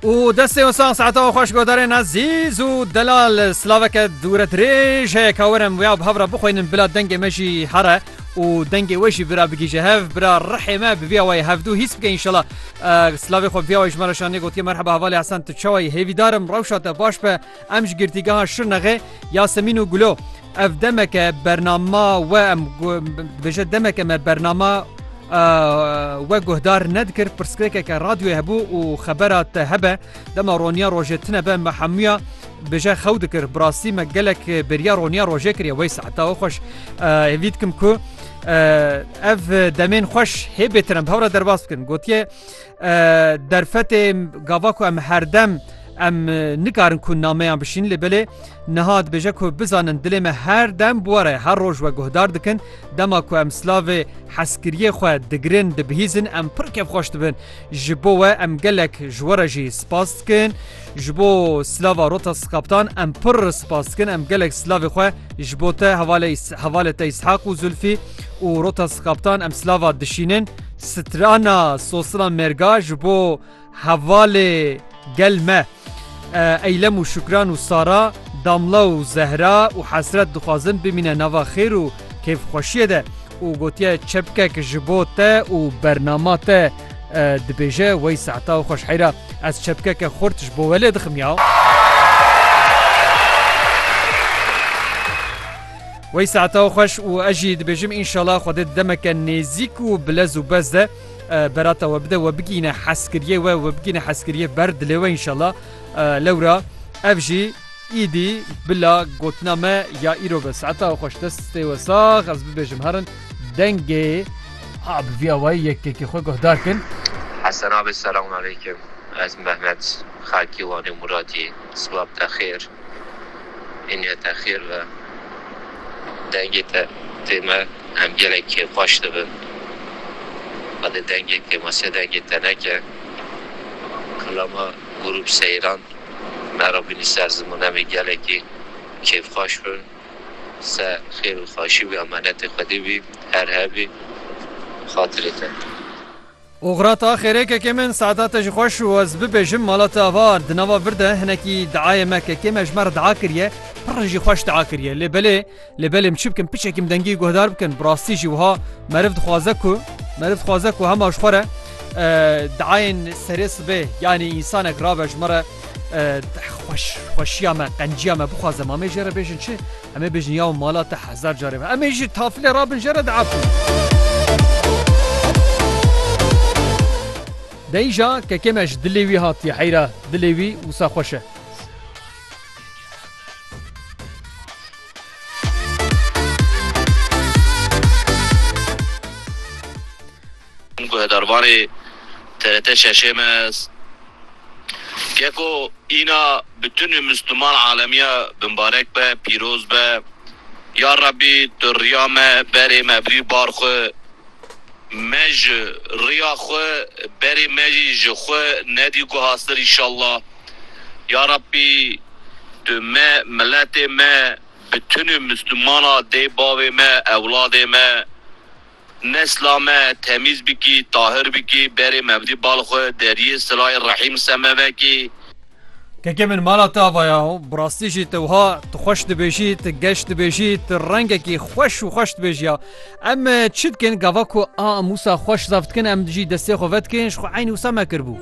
û destê wisan saeta û xweş godarên ezîz û delal slaveke dûre dirêj heye kawerim wiya bi hevra bixwînin bila dengê me jî here û dengê we jî bira bigîje hev bira rihê me bi vîya wayê hevdû hîs bike înşala slavê xwe vîya wayê ji me re şanê gotiye merheba hevalê hesen tu çawa yî hêvîdarim rewşa te baş be Em ji girtîgeha Şirnexê Yasemîn û Gulo ev demeke bernama we em dibêje demeke me bernama we guhdar nedikir pirsgirêkeke radyoyê hebû û xebera te hebe dema roniya rojê tine be me hemûya bêje xew dikir bi rastî me gelek beriya roniya rojê kiriye wey seheta we xweş hêvî dikim ku ev demên xweş hê bêtirin hewra derbas bikin gotiye Derfetê gava ku em herdem em nikarin ku nameyan bişînin lê belê niha dibêje ku bizanin dilê me her dem bi we re her roj we guhdar dikin dema ku em slavê heskiriyê xwe digirin dibihîzin em pir kevxweş dibin ji bo we em gelek ji we re jî spas dikin. Ji bo silava rota sikaptan em pir spas dikin em gelek silavê xwe ji bo te hevalê hevalê te Îshaq û Zulfî û rota sikaptan em silava dişînin strana sosina mêrga ji bo hevalê gel me eylem û şukran û sara damla û zehra û hesret dixwazin bimîne nava xêr û kêfxweşiyê de û gotiye çepkek ji bo te û bernama te Dibêje, Wey sehta û xweş heyra, ez çepkeke xurt ji bo we lê dixim ya. Wey sehta xweş û ez jî dibêjim înşala Xwedê di demeke nêzîk û bilez û bez de berata we bide we bigîne heskiriyê we we bigîne heskiriyê ber dilê we înşala lewra ev jî Îdî bila gotina me ya îro be. Saeta we xweş destê we sax ez bibêjim herin dengê a bi vî awayî yekekê xwe guhdar kin. Hesen abi selamun aleykum ez Mehmet xelkî Wanê Muratî silav te xêr îniye te xêr be dengê te tê me em gelek kêfxweş dibin qedê dengê tê me sê dengê te neke kila me Grûp Seyran mera bînî ser ziman em ê gelekî kêfxweş bin se xêr û xweşî bî emanetê xwedî bî her hebî xatirê te. Oxira te axêrê kekê min saeta te jî xweş û ez bibêjim mala te ava di nava vir de hinekî diayê me kekê me ji me re dia kiriye pirr jî xweş dia kiriye lê belê Lê belê min çi bikim piçekî min dengî guhdar bikin bi rastî jî wiha meriv dixwaze ku meriv dixwaze ku hema ji xwe re diayên serê sibê yanî însanek rabe ji min re xweş xweşiya me qenciya me bixwaze me amê jê re bêjin çi emê bêjin ya mala te hezar carê me emê jî tafilê rabin jê re diabin. Deyîja kekê me ji dilê wî hatiye heyra dilê wî wisa xweş e. Guhdarvanê TRT Şeşêmez, Geko îna bi tunê Misliman alemiya bimbarek be, pîroz be. Ya Rabbî tu riya me berê me bî bar xwe. Me ji riya xwe berê me jî ji xwe nedî guhastir îşallah. Ya Rabbî tu me, miletê me, bi tunî Mislumana dê bavê me, ewladê me, nesla me temîz bikî, tahir bikî, berê mevlî bal xwe deriyê sirayê rehîm seme vekî. Keke min mala te ava ya û bi rastî jî te wiha tu xweş dibêjî, tu geş dibêjî, tu rengekî xweş û xweş dibêjî ya. Em çi dikin gava ku a Mûsa xweş zaf dikin em jî destê xwe vedikin ji xwe eynî wisa me kiribû.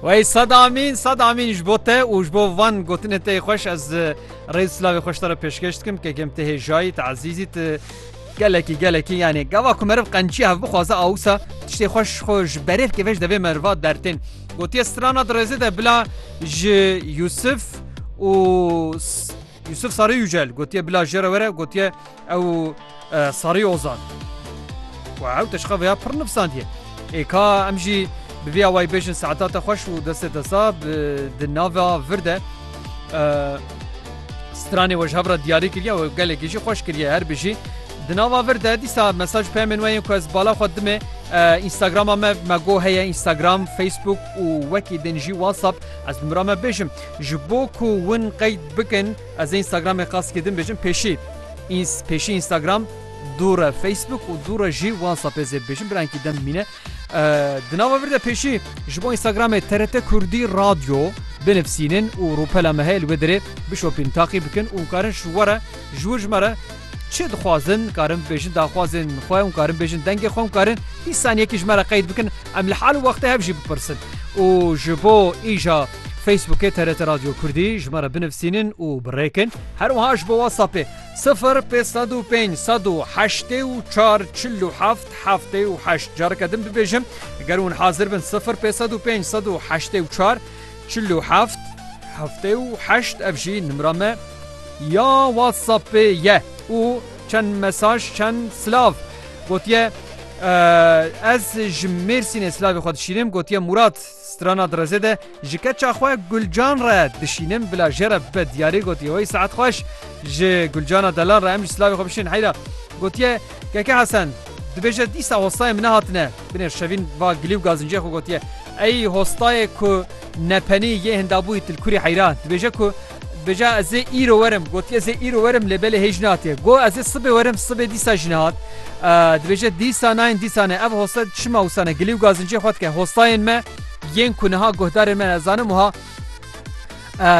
Wey sed amîn sed amîn ji bo te û ji bo van gotinê te xweş ez rêz silavê xweş te re pêşkeş dikim kekem te hêjayî te ezîzî te gelekî gelekî yanê gava ku meriv qençî hev bixwaze awisa tiştê xweş xwe ji berê bike vê ji devê meriva dertên gotiye strana di rêzê de bila ji Yusuf û Yusuf Sarî Yücel gotiye bila jê re were gotiye ew Sarî Ozan û ew teşqa vêya pir nivsandiye. Ê ka em jî bi vêya wayî bêjin saeta te xweş û destê te sab di nava vir de stranê we ji hev re diyarî kiriye û gelekî jî xweş kiriye her bijî. Di nava vir de dîsa mesaj peyemên we yên ku ez bala xwe dimê Instagrama me me go heye Instagram, Facebook û wekî din jî WhatsApp ez bi mira me bêjim. Ji bo ku win qeyd bikin ez ê Instagramê qasikê din bêjim pêşî ins pêşî Instagram dûre Facebook û dûre jî WhatsAppê zê bêjim birankî dem mîne di nava vir de pêşî ji bo Instagramê TRT Kurdî radyo binivsînin û rûpela me heye li wê dirê bişopîn taqî bikin û karin ji were ji wir ji me re çi dixwazin karin bêjin daxwazên xwe û karin bêjin dengê xwe û karin bîst saniyekî ji me re qeyd bikin em li hal û wextê hev jî bipirsin û ji bo îja Facebookê TRT Radyo Kurdî ji me re binivîsînin û birêkin. Her wiha ji bo WhatsAppê sifir pênc sed û pênc sed û heştê û çar çil û heft heftê û heşt. Careke din bibêjim ger hûn hazir bin sifir pênc sed û pênc sed û heştê û çar çil û heft heftê û heşt ev jî nimra me ya WhatsAppê ye û çend mesaj çend silav gotiye Ez ji Mêrsînê silavê xwe dişînim gotiye Mûrat. Strana direzê de ji keça xwe Gulcan re dişînim bila jê re bibe diyarî gotiye wey saet xweş ji Gulcana delan re em jî silavê xwe bişînin heyra gotiye Keke Hesen dibêje dîsa hostayên min nehatine binêr şevîn va gilî û gazincê xwe gotiye Ey hostayê ku nepenî yê hindabûyî tilkurî heyra dibêje ku Bêje ez ê îro werim, gotiye ez ê îro werim lê belê hêj natiye. Got ez ê sibê werim, sibê dîsa jî nehat. Dibêje dîsa nayên dîsa ne. Ev hosta çima wisa ne? Gilî û gazinciyê xwe dike. Hostayên me yên ku niha guhdarên me ne ez zanim wiha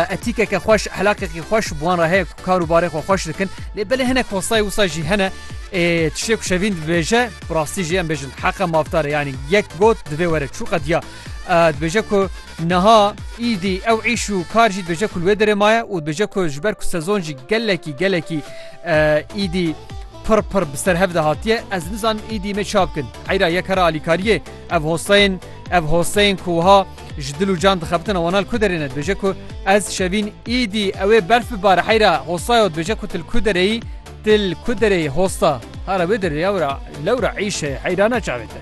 etîkeke xweş, ehlakekî xweş bi wan re heye ku kar û barê xwe xweş dikin. Lê belê hinek hostayê wisa jî hene tiştê ku şevîn dibêje bi rastî jî em bêjin heqa mafdar e yanî yek got divê were çû qediya dibêje ku Niha îdî ew îş û kar jî dibêje ku li wê derê maye û dibêje ku ji ber ku sezon jî gelekî gelekî îdî pir pir bi ser hev de hatiye ez nizanim îdî me çav kin. Eyra yek hera alîkariyê ev hoseyên ev hoseyên ku wiha ji dil û can dixebitin wana li ku derê ne dibêje ku ez şevîn îdî ewê berf bibare heyra hosayo dibêje ku til ku dereyî til ku dereyî hosta hara wê derê ya wira lewra îşe heyra ne çavê te.